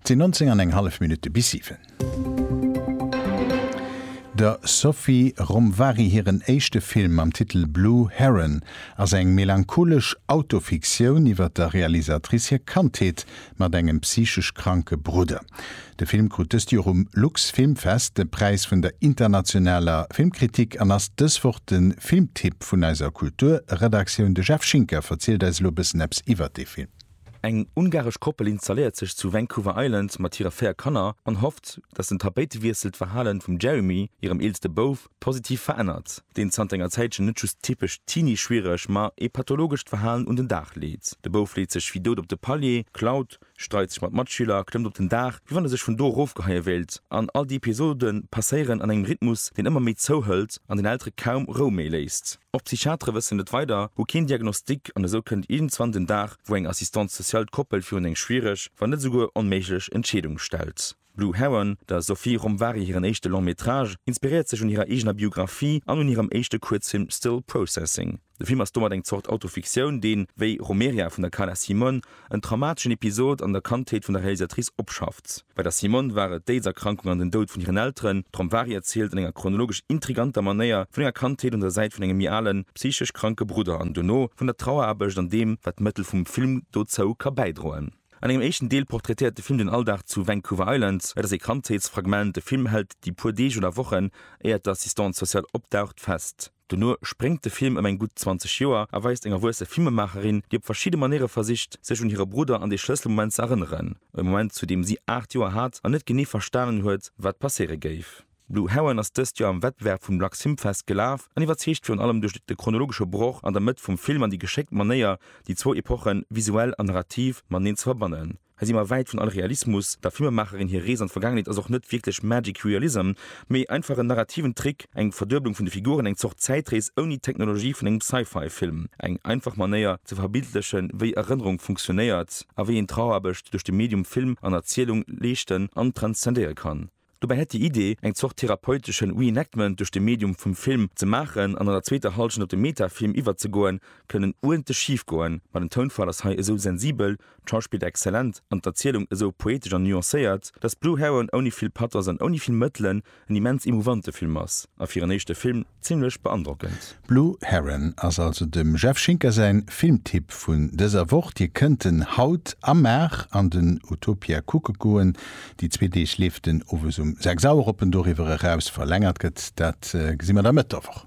Et sinn 19 an eng hallef Minutte bis 7. Der Sophie Romvari hiren éischte Film mam Titel Blue Heron ass eng melancholesch Autofiktioun iwwer der Realisatrice hir Kandheet mat engem psychesch kranke Brudder. De Film krut dëst Joer um Lux Filmfest de Präis vun der internationaler Filmkritik an ass dës Woch de Filmtipp vun eiser Kulturredaktioun. De Jeff Schinker verzielt eis elo e bëssen eppes iwwer dee Film. Eng ungaresch Koppel installéiert sech zu Vancouver Island mat hire véier Kanner an hofft, datt den Tapéitewiessel d'Verhalen vum Jeremy, hirem eelste Bouf, positiv verännert, deen zanter enger Zäitchen net just typesch Teenie-schwiereg, ma ee pathologescht Verhalen un den Dag leet. De Bouf leet sech wéi dout op de Palier, klaut, streit sech mat Matschüler, klëmmt op den Daach, wéi wann e sech vun do erofgeheie wéilt, an all déi Episode passéieren an engem Rhythmus, deen ëmmer méi zouhëlt an den Eltere kaum Rou méi léisst. Och d'Psychiatere wëssen net weider, hu keen Diagnostic an esou kënnt iergendzwann den Dag, wou eng Assistante sociale d'Koppel virun eng schwiereg, wann net esouguer onméiglech Entscheedung stellt. Blue Heron, der Sophie Romvari hiren éischte Long Métrage, inspiréiert sech un hirer eegener Biographie an un hirem éischte Kuerzfilm Still Processing. De Film ass domat eng Zort Autofiktioun, deen, wéi Romeria vun der Carla Simone, En traumateschen Episod an der Kandheet vun der Realisatrice opschafft. Bei der Simone war et d'Aidserkrankung an den Doud vun hiren Elteren. D'Romvari erzielt an enger chronologesch intriganter Manéier vun enger Kandheet un der Säit vun engem méi alen, psychesch kranke Brudder an dono vun der Traueraarbecht an deem, wat d'Mëttel vum Film dozou ka bäidroen. An engem éischten Deel portraitéiert de Film den Alldag zu Vancouver Island. Et ass ee Kandheetsfragment. De Film hält déi puer Deeg oder Wochen, éiert d'Assistante sociale opdaucht, fest. Dono spréngt de Film ëm eng gutt 20 Joer a weist eng erwuesse Filmemaacherin, déi op verschidde Manéiere versicht, sech un hire Brudder an dee Schlësselmoment ze erënneren, e Moment, zu deem si 8 Joer hat an net genee verstanen huet, wat passéiere géif. Blue Heron ass dëst Joer am Wettbewerb vum Lux Film Fest gelaf an iwwerzeegt virun allem duerch de chronologesche Broch an der Mëtt vum Film an déi geschéckt Manéier, déi zwou Epochen visuell an narrativ mateneen ze verbannen. Hei si mer wäit vun all Realismus. Der Filmemacherin hir Rees an d'Vergaangenheet ass och net wierklech Magic Realism, mee einfach en narrativen Trick, eng Verdueblung vun de Figuren, eng Zort Zäitrees ouni d'Technologie vun engem Sci-Fi Film. Eng einfach Manéier ze verbildlechen, wéi Erënnerung funktionéiert a wéi een d'Trauerearbecht duerch de Medium Film an Erzielung leeschten an transzendéiere kann. Dobäi hätt déi Idee, eng Zort therapeuteschen Reenactment duerch de Medium vum Film ze maachen an an der zweeter Hallschent op de Metafilm iwwerzegoen, kënnen uerdentlech schif goen. Ma den Tounfall ass hei esou sensibel, d'Schauspill exzellent an d'Erzielung esou poetesch an nuancéiert, dass Blue Heron ouni vill Pathos an ouni vill Mëttelen en immens emouvante Film ass a fir en éischte Film, Zimlech beandrockend. Blue Heron ass also dem Jeff Schinker säin Filmtipp vun dëser Woch. Dir kënnt en haut am Maach an den Utopia kucke goen. Déi zwee Deeg leeft en owes um 6 Auer op en doriwwer eraus verlängert gëtt. Dat gesi mer da Mëtt der Woch.